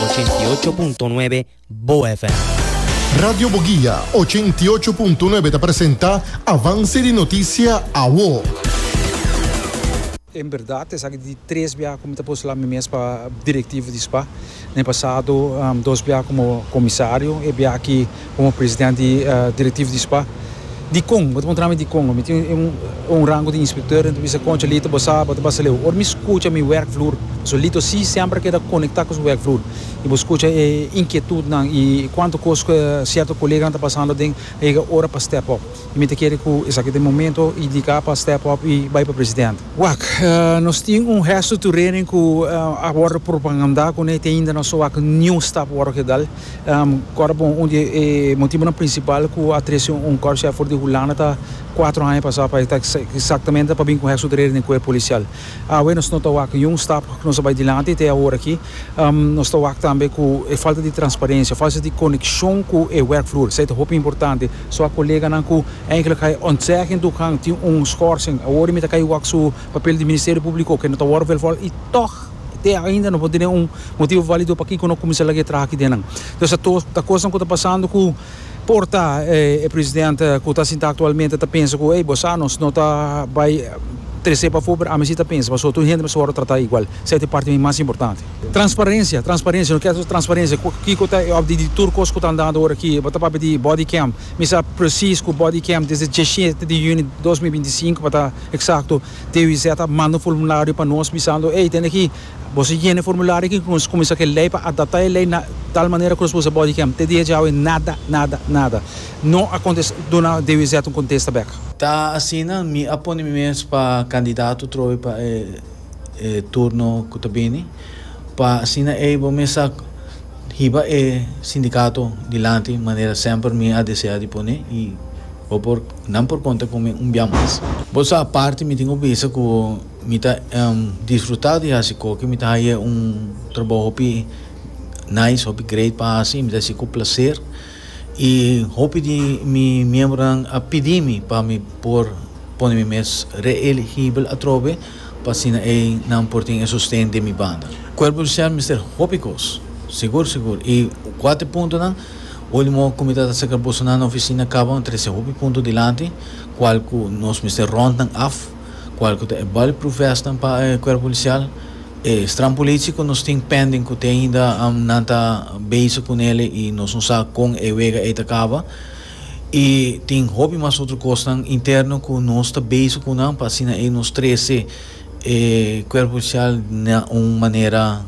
ochenta i ocho punto nuebe Bo FM. Radio Boguia ochenta i ocho punto nuebe ta presenta Avance di Noticia Awo. En berdad esaki di tres bia cu mi ta postula mi mes pa directivo di spa. Na e pasado dos bia como comisario, e bia aki. Komo presidente directivo di spa dikon bo ta montra mi dikon bo mi tin un rango di inspector enta bisa koncha Lito bo sa bo ta basa leu ora mi skucha mi werk vloer pasobra Lito si semper a keda konekta ku su werk vloer i bo skucha e inkietutnan i kuantu kos ku sierto koleganan ta pasando den a yega ora pa step up i mi ta kere ku esaki ta e momento indika pa step up i bai pa presidente. Wak nos tin un hesto turerin ku a wòrdu propagandá kuné te ainda no so wak niun stap wòrdu ke dal. Kòrpbon, Un di e motibonan prinsipal ku a trese un kòrpsjèf for di Hulanda ta kuater aña pasá pa e ta eksaktamente pa bin ku hèk su dere den kuerp polisial. Awe nos no ta wak niun stap ku nos ta bai dilanti te awor aki. Nos ta wak tambe ku e falta di transparensia, falta di konekshon ku e wèrkvloer. Esei ta hopi importante. So a koleganan ku eindelijk hai ontzeggen toegang tin un schorsing, awor e mi ta kai wak su papel di Ministerio Públiko ke no ta wòrdu velvòl i tòg, Te ainda no por tene un motibu valido pakiko no kuminsá lag'é traha aki den nan. Entonces ta tos ta kosnan ku ta pasando ku por ta e presidente ku ta sintá aktualmente ta pensa ku ey bo sa nos no ta bai tres'é pafó pero ami si ta pensa pasobra tur hende mi a wòrdu tratá igual. Esei ta e parti mas importante. Transparencia, transparencia, no kèr transparencia kiko ta e òpdi di tur kos ku ta andando ora aki. Bo ta papia di body cam. Mi sa presis ku body cam desde dies shete di yuni dos mil binti sinku pa ta eksakto. TWZ a manda un formulario pa nos bisando, Hey, tende aki, boso a yena e formulario aki ku nos kuminsá ku e lei pa adaptá e lei na tal manera ku nos por usa bòdi kèm. Te dia djawe nada, nada, nada. No a kontestá, duna TWZ un kontesta bèk. Ta asina mi a pone mi mes pa kandidato trobe pa e turno ku ta bini pa asina eibo mi sa hiba e sindikato dilanti manera semper mi a deseá di pone i bo por Nan por konta ku mi un bia mas. Bo sa aparte mi tin ku bisa ku mi ta disfrutá di hasi koke. Mi ta haña un trabou hopi nice, hopi great pa hasi. Mi ta hasi ku plaser. I hopi di mi miembronan a pidi mi pa mi por pone mi mes reeligibel atrobe pa asina ei nan por tin e sosten den mi banda. Kuerpo Kristien mester hopi kos, sigur sigur. I kuater puntonan. Ultimo ku mi ta ta aserka boso na nan ofisina kaba mi trese hopi punto dilanti kual ku nos mester rond nan af, kual ku ta e bulletproof vestnan pa e kuerpo polisial, e strampulichi ku nos tin pending ku te ainda nan ta bezig ku nele i nos no sa kon e wega ei ta kaba i tin hopi mas otro kosnan interno ku nos ta bezig ku nan pa asina ei nos trese e kuerpo polisial na un manera